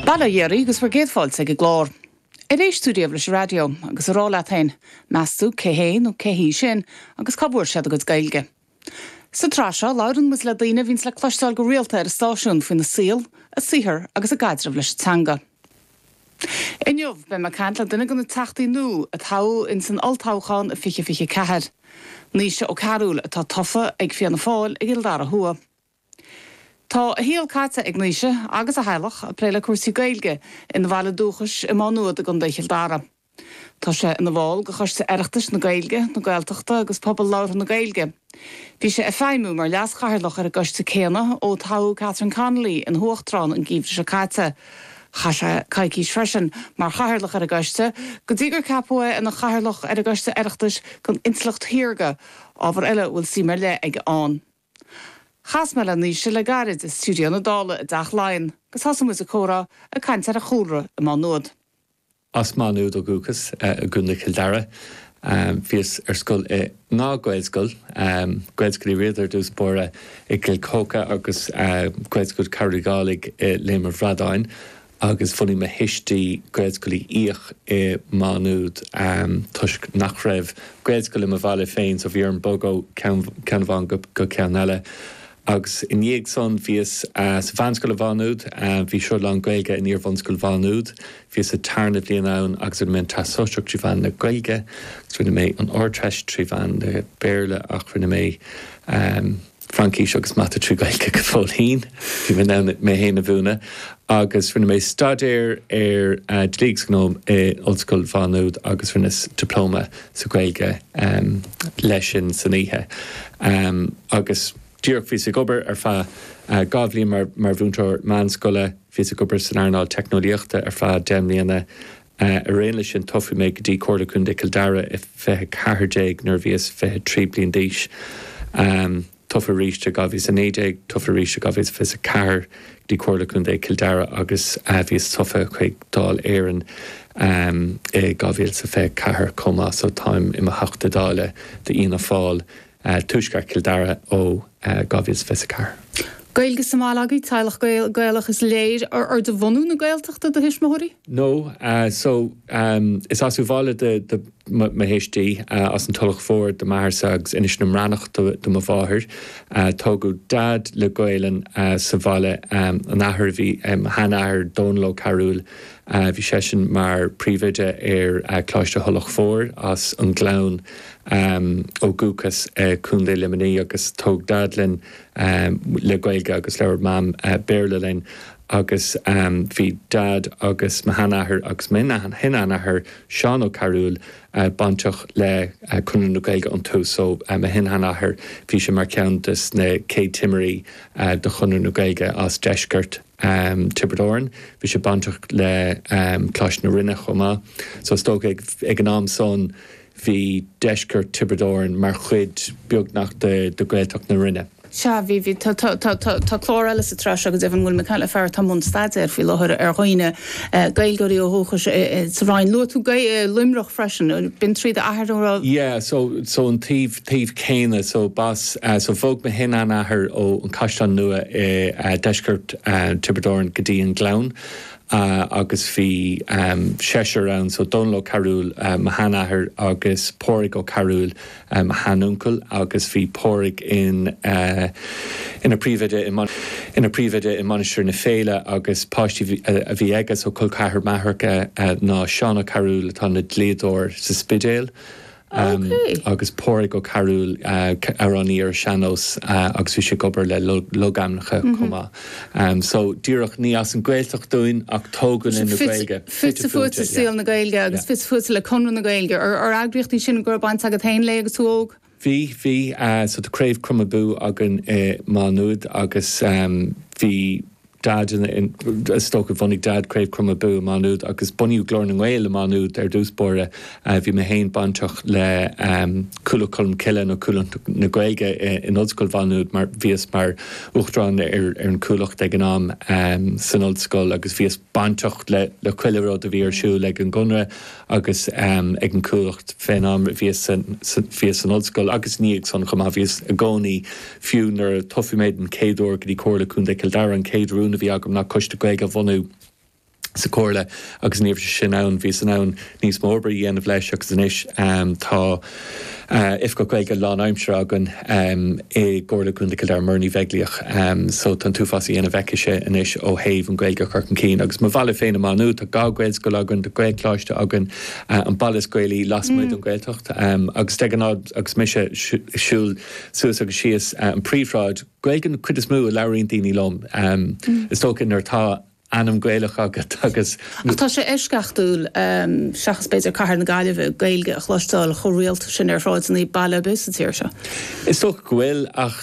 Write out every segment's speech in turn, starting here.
Bail ó Dhia oraibh agus bhur gcéad fáilte ag an gclár. Ar éist tú riamh leis an raidió? Agus ag rá leat féin, meas tú cé hé nó cé hí sin agus cá bhfuair siad a gcuid Gaeilge? Sa tsraith seo, labhrann muid le daoine a bhíonns le cloisteáil go rialta ar an stáisiún faoina saol, a saothar agus a gcaidreamh leis an teanga. Inniu, beidh mé ag caint le duine de na Teachtaí nua a toghadh in san Olltoghchán i 2024. Naoise Ó Cearúil, atá tofa ag Fianna Fáil i gCill Dara Thuaidh. Tá a shaol caite ag Naoise agus a theaghlach ag plé le cúrsaí Gaeilge ina bhaile dúchais i Má Nuad i gContae Chill Dara. Tá sé ina bhall de Choiste Oireachtais na Gaeilge, na Gaeltachta agus Pobal Labhartha na Gaeilge. Bhí sé ag feidhmiú mar Leas-Chathaoirleach ar an gcoiste céanna ó toghadh Catherine Connolly ina huachtarán an geimhreadh seo caite. Chaith sé coicís freisin mar Chathaoirleach ar an gcoiste go dtí gur ceapadh é ina Chathaoirleach ar an gCoiste Oireachtais don Intleacht Shaorga, ábhar eile a bhfuil suim ar leith aige ann. Chas mé le Naoise le gairid i stiúideo na Dála i dTeach Laighean agus thosaigh muid an comhrá ag caint ar a chúlra i Má Nuad. As Má Nuad ó dhúchas, i gContae Chill Dara. Bhíos ar scoil i ndhá Ghaelscoil, Gaelscoil Uí Riada ar dtús báire i gCill Choca agus Gaelscoil Chearbhaill Uí Dhálaigh i Léim an Bhradáin. agus bhunaigh mo thuistí Gaelscoil Uí Fhiaich i Maigh Nuad toisc nach raibh Gaelscoil i mo bhaile féin so bhí orm bogadh ó cheann amháin go ceann eile agus i ndiaidh san bhíos sa mheánscoil i Maigh Nuad, bhí sruth lán-Ghaeilge in iar-bhunscoil Mhaigh Nuad, bhíos sa tarna bhliain ann agus rinne mé an Teastas Sóisearach trí mheán na Gaeilge agus rinne mé an Ardteist trí mheán na Béarla ach rinne mé. Fraincis agus Mata trí Gaeilge go fóill féin. Bhí mé in ann mé féin a mhúineadh agus rinne mé staidéar ar Dlí agus Gnó i Ollscoil Mhá Nuad agus rinneas Dioplóma sa Ghaeilge leis sin san oíche. Agus díreach bhíos ag obair ar feadh dhá bhliain mar mhúinteoir meánscoile. Bhíos ag obair san earnáil teicneolaíochta ar feadh deich mbliana. Ar aon leis sin toghadh mé go dtí Comhairle Contae Cill Dara i 2014 nuair a bhíos 23 bliain d'aois. Tofa arís i 2019. Tofa arís i 2024 go dtí Comhairle Contae Cill Dara agus bhíos tofa chuig Dáil Éireann i 2024 chomh maith so táim i mo Theachta Dála d'Fhianna Fáil. Tuaisceart Chill Dara ó 2024. Gaeilge sa mbaile agaibh, teaghlach Gaelach is léir. Ar de bhunadh na Gaeltachta do thuismitheoirí? No, so is as Uíbh Fhailí do mo thuistí, as an Tulach Mhór do m'athairse agus Inis na mBreathnach do mo mháthair. Tógadh Daid le Gaolainn sa bhaile, an athair a bhí, a sheanathair Dónall Ó Cearúil Bhí seisean mar Príomhoide ar Coláiste Thulach Mhóir as an nGleann ó dhúchas i Co. Luimnigh agus tóg Daid linn le Gaeilge agus labhair Mam Béarla linn agus bhí Daid agus mo sheanathair agus mo shin-sheanathair, Seán Ó Cearúil, bainteach le Conradh na Gaeilge ón tús so mo shin-sheanathair bhí sé mar cheann des na céad timirí do Chonradh na Gaeilge as deisceart um Tiobraid Árann. Bhí sé bainteach le um Coláiste na Rinne chomh maith. So is dócha ag ag an am san bhí deisceart Tiobraid Árann mar chuid beagnach de de Gaeltacht na Rinne. Sea, bhí, bhí, tá, tá, tá, tá, tá clár eile sa tsraith seo, go deimhin, bhuel, Michelle Farr atá i mbun staidéir faoi láthair ar dhaoine, eh Gaeilgeoirí ó dhúchais i i sa Rinn. Luaigh tú Gae eh Luimneach freisin, b'in tríd d'athair a raibh. Yeah, so, so an taobh. taobh céanna so b'as so bhog mo shin shean-athair ó an Caisleán Nua i deisceart Thiobraid Árann go dtí an Gleann agus bhí seisear ann so Dónal Ó Cearúil mo shean athair agus Pádraig Ó Cearúil mo shean uncail agus bhí Pádraig in ina phríomhoide in ina phríomhoide i Mainistir na Féile agus páistí a bhí aige so col ceathar m'athar ná Seán Ó Cearúil atá ina dlíodóir sa Spidéal Agus Pádraig Ó Cearúil, amhránaí ar sean-nós agus bhí sé ag obair le logainmneacha chomh maith. So díreach ní as an Gaeltacht dúinn ach tógadh linn le Gaeilge. Fite fuaite le saol na Gaeilge agus fite fuaite le Conradh na Gaeilge. Ar eagraíocht í sin go raibh baint agat féin léi agus tú óg? Bhí, bhí. So tá Craobh Crom Abú againn i Maigh Nuad agus bhí Dad i dtosach. Bhunaigh Dad Craobh Crom Abú i Maigh Nuad agus bunaíodh Glór na nGael i Maigh Nuad ar dtús báire. Bhí mé féin bainteach le Cuallacht Cholm Cille nó Cuallacht na Gaeilge in Ollscoil Mhaigh Nuad mar bhíos mar Uachtarán ar an Chuallacht ag an am san Ollscoil agus bhíos bainteach le chuile rud a bhí ar siúl ag an gConradh agus ag an Chuallacht faoin am a bhíos san Ollscoil agus i ndiaidh san chomh maith. Bhíos i gcónaí. Fiú nuair a tosaigh mé don chéad uair go dtí Comhairle Contae Chill Dara, an chéad rún a bhí agam ná Coiste Gaeilge a bhunú sa Chomhairle agus an uair sin ann bhíos in ann níos mó oibre a dhéanamh leis agus anois tá Oifigeach Gaeilge lán-aimsire againn i gComhairle Contae Chill Dara, Muireann Ní Bheaglaoich, so tá an t-uafás a dhéanamh aici-se anois ó thaobh an Ghaeilge a chur chun cinn. Agus mo bhaile féin i Maigh Nuad, tá dhá Ghaelscoil againn, tá Gaelcholáiste againn, an baile is Gaelaí lasmuigh den Ghaeltacht agus de ghnáth agus mise ag siúl, suas agus síos an phríomhshráid. Gaeilge an cuid is mó a labhraíonn daoine liom, is dócha nuair atá ainm Gaelach agat agus. Ach tá sé eisceachtúil, seachas b'fhéidir cathair na Gaillimhe, Gaeilge a chloisteáil chomh rialta sin ar shráideanna baile ar bith sa tír seo. Is dócha go bhfuil ag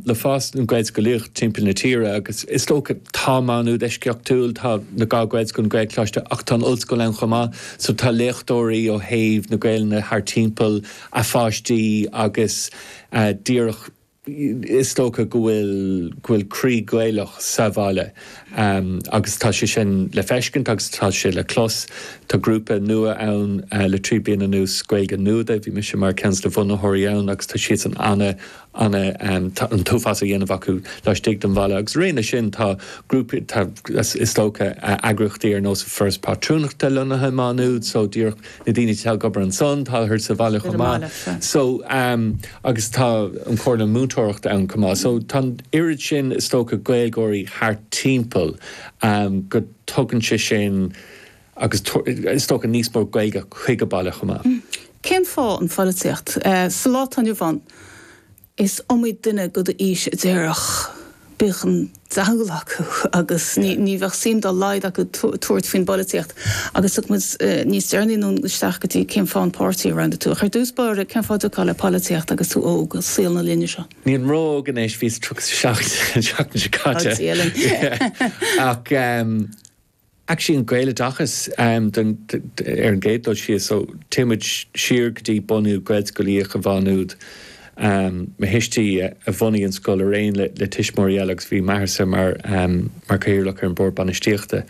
le fás na Gaelscolaíochta timpeall na tíre agus is dócha, tá Má Nuad eisceachtúil, tá na Gaelscoileanna, Gaelcholáiste ach tá an ollscoil ann chomh maith so tá léachtóirí ó thaobh na Gaelainne thart timpeall a bpáistí agus díreach is dócha go bhfuil go bhfuil croí Gaelach sa bhaile agus tá sé sin le feiscint agus tá sé le clos. Tá grúpa nua ann le trí bliana anuas, Gaeilge Nuada, bhí mise mar ceann de na bhunaitheoirí ann agus tá siadsan ana an t-uafás a dhéanamh acu laistigh den bhaile. Agus araon leis sin, tá grúpaí, tá, is dócha, eagraíochtaí ar nós an Foras Pátrúnachta lonnaithe i Má Nuad, so díreach na daoine atá ag obair ansan, tá thart sa bhaile chomh maith. So, agus tá an Comhairle Múinteoireachta ann chomh maith. So tá an oiread sin, is dócha, Gaeilgeoirí thart timpeall go dtugann sé sin, Agus is dócha níos mó Gaeilge chuig an baile chomh maith. Cén fáth an pholaitíocht? Sa lá atá inniu ann, is iomaí duine de d'aois a déarfadh bíodh an diabhal acu agus ní bheadh suim dá laghad acu tabhairt faoin bpolaitíocht. Agus tiocfaidh muid níos deireanaí anonn isteach go dtí cén fáth an páirtí a roghnaigh tú. Ach ar dtús báire, cén fáth a rachfá le polaitíocht agus tú óg, i saol na linne seo? Nílim ró-óg anois, bhíos 37 an seachtain seo caite. Ach Actually an Gaeloideachas ar an gcéad dul síos so téann muid siar go dtí bunú Gaelscolaíocht i Má Nuad. Mo thuistí a bhunaigh an scoil araon le tuismitheoirí eile agus bhí m'athairsa mar Cathaoirleach ar an Bord Bainistíochta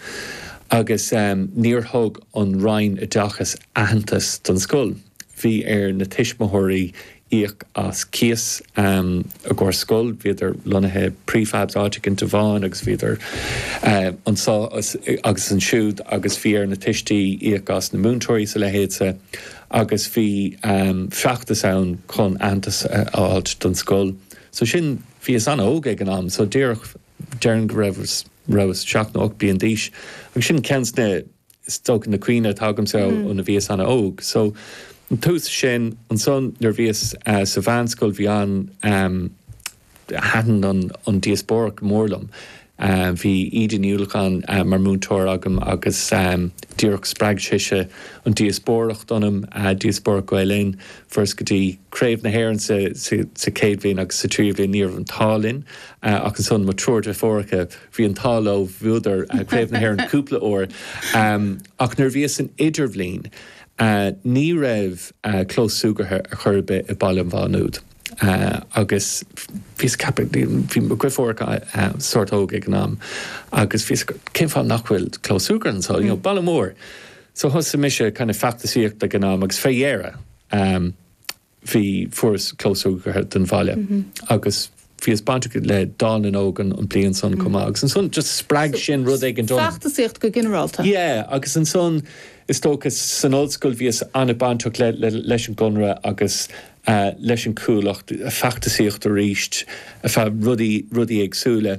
agus níor thug an Roinn Oideachais aitheantas don scoil. Bhí ar na tuismitheoirí íoc as cíos i gcóir scoil. Bhíodar lonnaithe prefabs áit éigint in tobán agus bhíodar anso agus ansiúd agus bhí ar na tuistí íoc as na múinteoirí is a leithéid sa agus bhí feachtas ann chun aitheantas a fháilt don scoil so sin bhíos an-óg ag an am so díreach déarfainn go raibh rabhas seacht nó ocht bliain d'aois agus sin ceann de na Is dócha na cuimhní atá agamsa ó a bhíos ana óg so an tús sin. Ansan nuair bhíos sa mheánscoil bhí an em thaitin an an díospóireacht go mór liom. Bhí Íde Ní Uallacháin mar múinteoir agam agus em díreach spreag sise an díospóireacht ionam, díospóireacht Gael Linn. Fuaireas go dtí Craobh na hÉireann sa sa sa chéad bhliain agus sa tríú bhliain ní raibh an t-ádh linn ach ansan mo triúr deirfiúracha, Bhí an t-ádh leo, bhuadar Craobh na hÉireann cúpla uair, ach nuair a bhíos san idirbhliain ní raibh clós súgartha ar chor ar bith i Baile Mhá Nuad agus bhíos ag ceapadh, bhí mo dhriféaracha sórt óg ag an am, agus bhíos ag ceapadh cén fáth nach bhfuil clós súgartha anso, you know, baile mór. So thosaigh mise kind of feachtasaíocht ag an am agus fé dheireadh, bhí, fuaireas clós súgartha don bhaile agus bhíos bainteach le Dáil na nÓg an bliain san chomh maith agus ansan just spreag sin rud éigin ionam. So, feachtasaíocht go ginearálta? Yeah, agus ansan is dócha san ollscoil bhíos an-bainteach leis an gConradh agus leis an Chuallacht, feachtasaíocht arís, ar feadh rudaí, rudaí éagsúla.